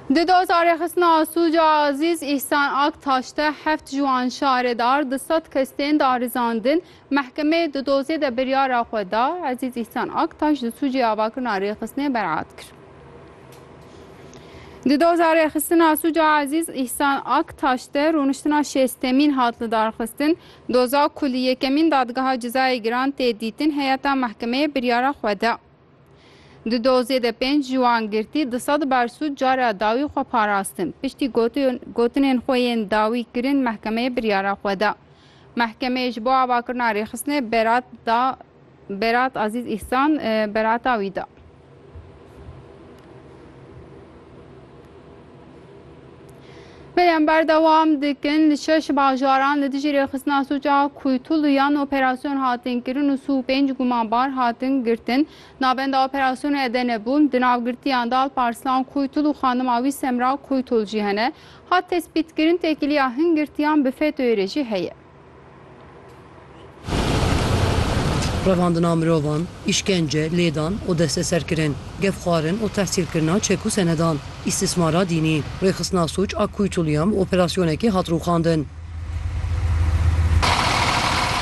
Di doza rêxistina Asûca Azîz Îhsan Ak taşte heft ji wan şaredar di sed kes tên darizandin. Mehkemeyê di dozê de biryara xwe da. Ezîz Îhsan Ak taş di sûcê avakirina rêxistinê beraat kir. Di doza rêxistina Sûca Ezîz Îhsan Aktaş de rûniştina şêstemîn hat li darxistin. Doza ku li yekemîn dadgeha cezayê giran tê dîtin heyeta mehkemeyê biryara xwe da. Di dozê de pênc ji wan girtî di sed ber sûd cara dawî xwe parastin. Piştî gotinên xwe yên dawî kirin mehkemeyê biryara xwe da. Mehkemeyê ji bo avakirina rêxistinê berat da Berat Azîz Îhsan berata wî da. Bêyem berdewam dikin li şeş bajaran li dijî rêxistina sûca Kuytuluyan operasyon hatin kirin û sû pênc gumanbar hatin girtin. Navenda operasyonê Edene bûn. Di navgirtiyan de Alparslan Kuytul û xanima wî Semra Kuytul jî hene. Hat tespîtkirin têkiliya hin girtiyan bi FETÖ'yê re jî heye. Revandina mirovan, îşkence, lêdan û desteserkirin, gefxwarin û tehsîlkirina çek û senedan, îstîsmara dînî, rêxistina sûc a Kuytulyan bi operasyonekê hat rûxandin.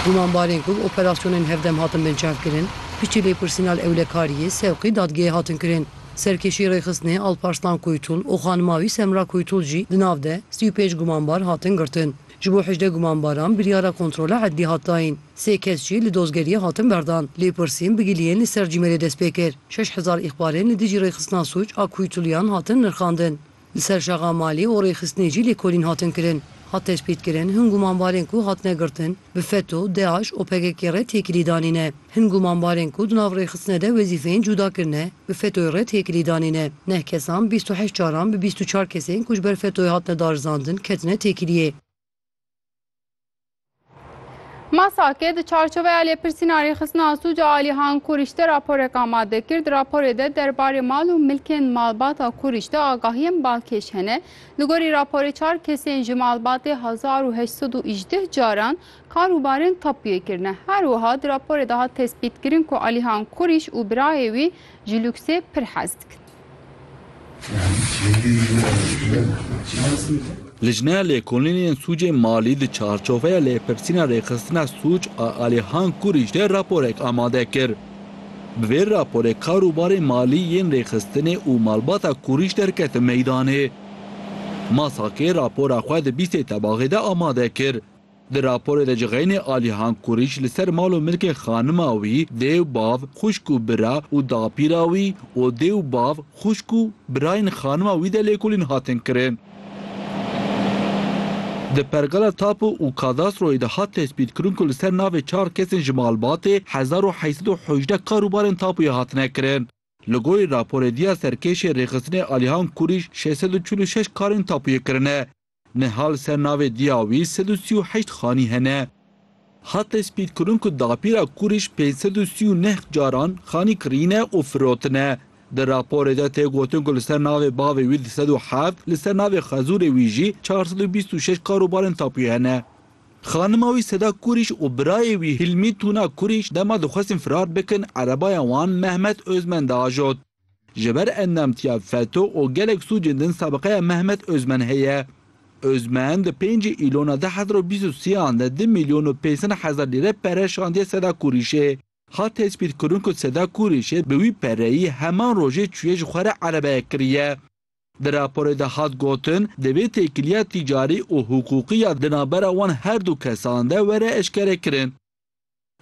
Gumanbarên ku bi operasyonên hevdem hatin binçavkirin, piştî lêpirsîna li ewlekariyê sewqî dadgehê hatin kirin. Serkêşî rêxistinê Alparslan Kuytul û xanima wî Semra Kuytul jî di nav de sî û pênc gumanbar hatin girtin. Ji bo hejdeh gumanbaran biryara kontrola edlî hat dayîn. Sê kes jî li dozgeriyê hatin berdan. Lêpirsîn bigiliyên li ser cîmêlê dest pê kir. Şeş hezar îxbarên li dijî rêxistina sûc a kuytuluyan hatin nirxandin. Li ser şaxa malê û rêxistinê jî lêkolîn hatin kirin. Hat tespîtkirin hin gumanbarên ku hatine girtin bi FETO, DAIŞ û PKK'ê re têkilî danî ne. Hin gumanbarên ku di nav rêxistine de wezîfeyên cuda kirine, bi FETÖ'yê re têkilî danîne. Neh kesan bîst û heşt caran bi bîst û çar kesên ku ji ber FETÖ'yê hatine darizandin ketine têkiliyê. MASAK'ê di çarçoveya lêpirsîna rêxistina sûc a Alî Han Kurîş de raporek amade kir. Di raporê de derbarê mal û milkên malbata Kurîş de agahiyên balkêş hene. Li gorî raporê çar kesên ji malbatê hezar û heşt sed û îjdeh caran Karûbarên tapûyê kirine. Her wiha di raporê de hat tespîtkirin ku Alîhan Kurîş û birayê wî ji lûksê pir hez dikin. Lijneya Lêkolînê yên Sûcên Malî di çarçoveya lêpirsîna rêxistina sûc a Alîhan Kurîş de raporek amade kir. Bi vê raporê karûbarên malî yên rêxistinê û malbata Kurîş derketin meydanê. MASAKê rapora xwe di bîstê tebaxê de amade kir. Di raporê de cixeynê Alihan Kurîç li ser mal û milkên xanima wî, dêw, bav, xwişk û bira û dapîra wî û dêw, bav, xwişk û birayên xanima wî de lêkolîn hatin kirin. Di pergala tapu û kadastroyê de hat tespîtkirin ku li ser navê çar kesên ji malbatê hezar û heşt sed û hejdeh karûbarên tapuyê hatine kirin. Li gorî raporê diya serkêşê rêxistinê Alihan Kurîş şêst sed û çil û şeş karên tapuyê kirine. Niha li ser navê diya wî sed û sî û heşt xanî hene. Hat tespîtkirin ku dapîra Kurîş pênc sed û sî û neh caran xanî kirîne û firotine. Di raporê de tê gotin ku li ser navê bavê wî du sed û heft, li ser navê xezûrê wî jî çar sed û bîst û şeş kar û barên tapuyê hene. Xanima wî Seda Kurîş û birayê wî Hilmî Tuna Kurîş dema dixwestin firar bikin erebaya wan Mehmet Ozmen diajot. Ji ber endamtiya FETO û gelek sûcên din sabiqeya Mehmet Ozmen heye. Ozmen di pêncî Îlona du hezar û bîst û sê an de du mîlyon û pênc sed hezar lîre pere şandiye Seda Kurîşê. Hat tespîtkirin ku Seda Kurîşê bi wî pereyî heman rojê çûye ji xwe re erebeyek kiriye. Di raporê de hat gotin, divê têkiliya tîcarî û hiqûqî ya di navbera wan her du kesan de were eşkerekirin.